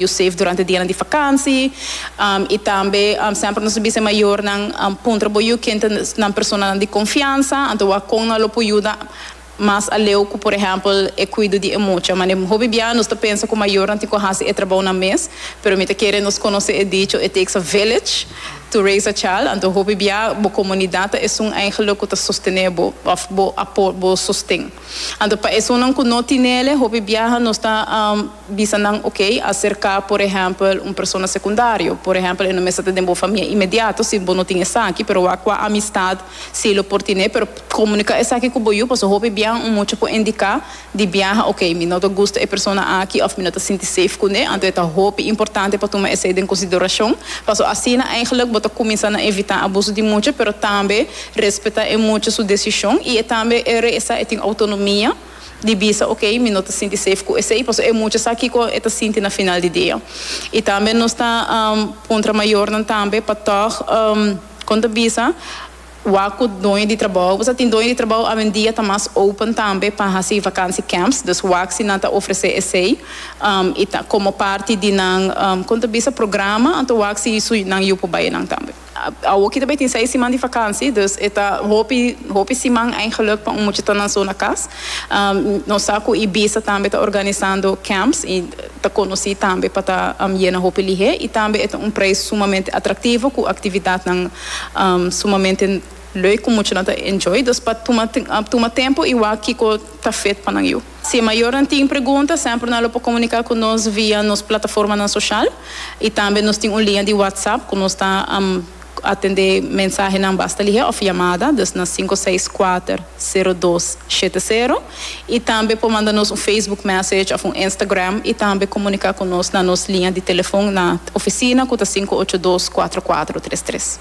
Yo save durante dianan di fakansi i tambe semper nos a bisa e mayornan puntra bo yu ken ta nan personanan di konfiansa, anto wak kon nan lo por yuda mas aleu ku por ehèmpel e kuido di e mucha. Mane hopi bia nos ta pensa ku mayornan tin ku hasi e trabounan mes, pero mi ta kere nos konosé e dicho it takes a village to raise a child, anto hopi bia bo komunidat ta esun eingelik ku ta sostené bo òf bo apo bo sosten. Anto pa esunnan ku no tinele hopi biaha nos ta. Bisa nan ok acerca por ehempel un persona secundario, por ehempel e no mester ta den bo famia inmediato si bo no tin esaki, pero wak cu amistad si lo por tine, pero comunica esaki cu bo yu, pasobra hopi biaha un mucha por indica di biaha ok mi no ta gusta e persona aki of mi no ta sinti safe cu ne, anto ta hopi importante pa tuma esey den consideracion, pasobra asina eigenlijk bo ta cuminsa na evita abuso di mucha, pero tambe respeta e mucha su decision y e tambe e regresa e tin autonomia. di bisa ok mi no ta sinti safe cu esey pasobra e mucha sa kico e ta sinti na final di dia y tambe nos ta puntra mayornan tambe pa tog con ta bisa wak cu doño di trabao pasobra tin doño di trabao awendia ta mas open tambe pa haci vakantie camps dus wak si nan ta ofrece esey y ta como parti di nan con ta bisa programa anto wak si su nan yu por bay nan tambe. Awor kita bai tin seis siman di vakansi, dus e ta hopi hopi siman eigenlijk pa un mucha ta nan zona kas. Nos sa ku Ibiza tambe ta organisando camps i ta konosí tambe pa ta yena hopi lihé i tambe e ta un preis sumamente atraktivo ku aktividatnan sumamente leuk ku muchanan ta enjoy. Dus pa tuma tuma tempu i wak kiko ta fit pa nan yu. Si e mayornan tin pregunta, semper nan lo por comunica cu nos via nos plataformanan social y tambe nos tin un linea di WhatsApp cu nos ta atende mensahenan basta lihe of yamada, dus na sinku seis kuater sero dos shete sero, y tambe por manda nos un Facebook message of un Instagram y tambe comunica cu nos na nos linea di telefon na oficina cu ta sinku ocho dos kuater kuater tres tres.